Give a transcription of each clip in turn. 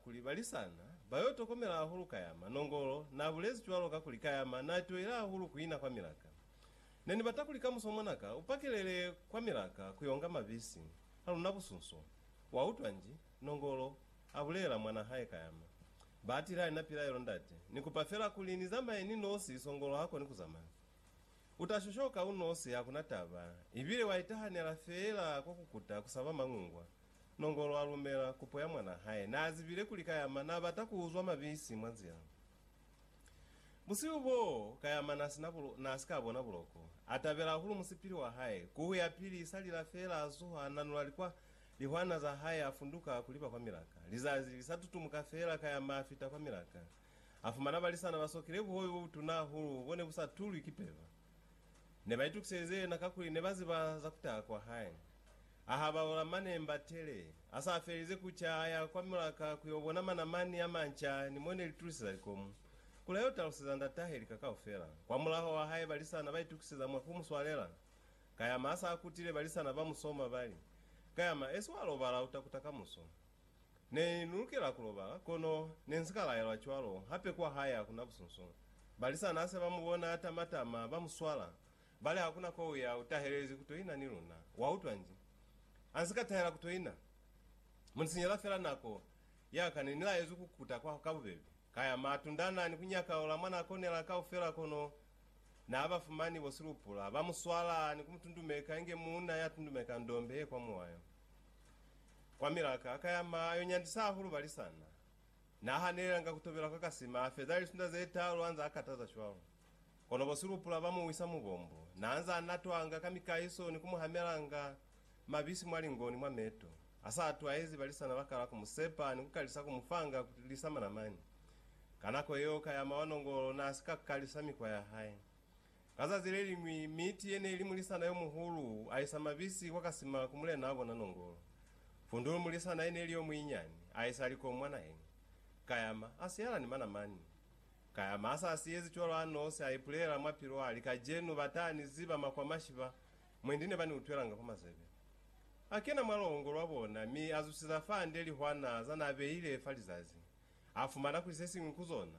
Kuli Balisana ba yo tokomela hahulu Kayama, Nongolo n'a bulezi cwalo kakuli Kayama n'a toile hahulu ku ina kwa milaka. Ne ni bata kuli kamuso mwanaka u pakelele kwa milaka ku y'onga mabisi a luna busunso. Wa utwa nji? Nongolo a bulela mwan'a hae Kayama. Ba atile ha ni na pilaelo, Ndate, ni kupa fela kuli ni zamaye ni nosi, Songolo ha koni ku zamaya. U ta shoshoka u nosi, ha ku na taba, ibile wa itahanela fela kwa ku kuta ku saba mañungwa Nongolo a lumela kupo ya mwanaa hae. Naa zibile kuli Kayama naa bata ku uzwa mabisi mwa nzila. Busihu boo, Kayama naa si na bulo, naa si ka bona buloko. A tabela hahulu musipili wa hae. Ku huya pili, sa lila feela a zuha, a nanula likwa, lihwana za hae, a funduka ku liba kwa milaka. Lizazi li sa tutumuka feela, Kayama a fita kwa milaka. A fumana balisana ba sokile buhobe bo butuna hahulu bo ne bu sa tulwi ki peba. Ne ba itukiselize yena kakuli ne ba ziba za ku taha kwa hae. A habaula mane mbatele. A sa felize ku ca, a ya kwa mulaka ku yo bona manamani a manca ni mo ne li tuliseza likomu, kuli a yo taluseza ndatahe lika kaufela. Kwamulaho wa haiba lisana ba itukiseza mwa ku mu swalela, Kayama a sa kutile, balisana ba mu soma, ba li, Kayama, esi wa lobala, u ta kuta kamuso. Ne ni lukela ku lobala, kono Ne nzi ka laelwa cwalo, hape kwa hae hakuna busunsu. Balisana hase ba mu bona a tama-tama, ba mu swala, ba li, Hakuna ko u ya, u tahelezi ku to ina ni luna. Wa utwa nji? A nzi ka tahela ku to ina. Mu ni sinyela fela nako ya ka. Ne ni laezwi ku kuta kwa ka bubeli. Ka ya ma tundana ni ku nyaka ola mwa na konela kaufela, kono Na ba fumani bo silupula. Ba mu swala ni ku mu tundumeka inge muuna ya tundumeka ndombe ye kwa muwayo. Kwa milaka, ka ya ma yo nyandisa hahulu balisana. Na hanelelanga ku tobela kwa Kasima, a feza lisunda ze talu anza a kataza cwalo. Kono bo Silupula ba mu wisa mu bombo. Na anza a natwanga ka mikahiso ni ku mu hamelanga mabisi mwa lingo ni mwa meto. A sa atwahezi balisana ba kala ku mu sepa ni ku kalisa ku mu fanga ku lisa manamani. Ka nako yeo, ka ya ma wa nongolo na si ka kalisa mikwa ya hae. Ka zazi leliñwi, miti yene ili mulisana yomuhulu aisa mabisi kwa kasima ku mulena wabona Nongolo. Fundulu, mulisana yene ili yomuinyani, aisa likomu mwa naheni. Kayama, asiyala ni manamani. Kayama asa siyezi cwalo anosi, aipulela mwa pilu ali, Kajenu batani ziba makwamashi ba, mwendi ne bani utwelanga kwa mazebe. Akena mwa longo lwabona, mi azusiza fande lihwana zanabeile fa lizazi. Afumana kuli sesiñwi ku zona,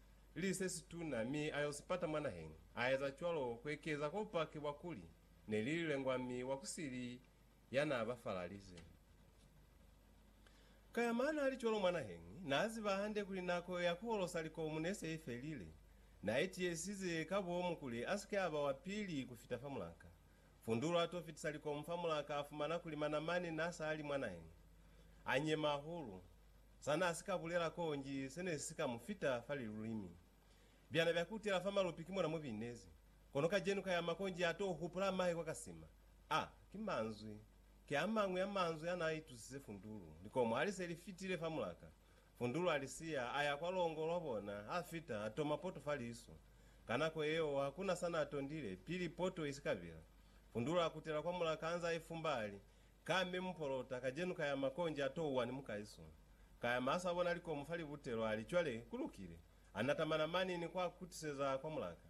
li se situna mi a yo si pata mwa naheñi. A eza cwalo ku ekeza kwa bupaki bwa kuli ne li lilengwa mi wa ku sili ya n'a ba falalize. Ka ya ma n'a li cwalo mwa naheñi, n'a ziba hande kuli nako ya ku holosa likomu ne se i felile. N'a itiisize ka bomu kuli a si ke a ba wa pili ku fita fa mulanka. Fundulu a t'o fitisa likomu fa mulanka a fumana kuli manamani n'a sa li mwa naheñi. A nyema hahulu. Sa n'a si ka bulela konji se ne si ka mu fita fa lilulimi. Byana bya kutela fa malupi ki mo na mu binezi. Kono kajenu ka ya ma konji a t'o hupula mahe kwa ka sima. A ki manzwi. Ki a mañwi a manzwi a n'a itusise Fundulu. Likomo ha li se li fitile fa mulaka, Fundulu a li siya, a ya kwa longo lwa bona, a fita, a toma poto fa liso. Ka nako yeo, ha ku na sa n'a tondile, pili poto i si ka bela. Fundulu a kutela kwa mulaka anze a ifumba, a li, Ka mi mupolota, Kajenu ka yama konji a touwa ni mukaisu. Ka yama a sa bona likomu fa libutelo, a li, Cwale, ku lukile. A nata manamani ni ku a kutiseza kwa mulaka.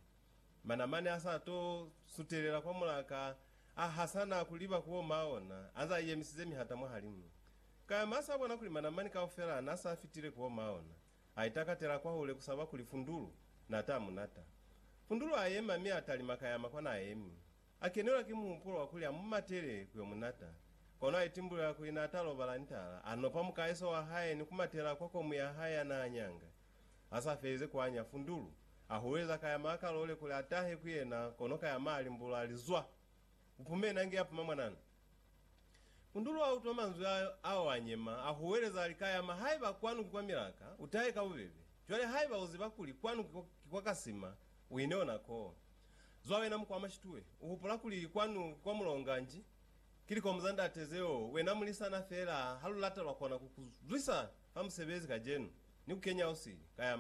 Manamani a sa to sutelela kwa mulaka, a hasana ku liba ku oma ona, anze a yemisize mihata mwahalimu. Ka yama a sa bona kuli manamani kaufela na sa fitile ku oma ona. A itakatela kwahule ku saba kuli Fundulu na ta mu nata. Fundulu a yema mi a talima ka yama kwa na emi. A kenelwa ki muhupulo wa kuli a mu matele ku yo mu nata. Kono a itimbulela kuli n'a ta lobala ni taala, a nopa mukaeso wa hae ni ku matela kwa komu ya hae ya n'a nyanga. Ha s'a felize ku anya fundulu, a hulweza ka ya m'a kalole kuli a tahe ku yena kono ka ya m'a limbulula a li, Zwa! U pume n'a nge a puma mwanana. Fundulu a utwa manzwi ayo, a oa nyema, a huweleza a li, Ka ya m'a, haiba kwanu ki kwa milaka, u tahe ka bubebe. Cwale haiba u ziba kuli kwanu ki kwa ka sima, u ine ona koo. Zwa wena muku wa mashitue, u hupula kuli kwanu ki kwa mulonga nji? Ki likomu za ndate zeo wena mulisana feela ha lu lata lwa kona ku ku zwisa fa musebezi kajenu ni ku kenya usili, kayama.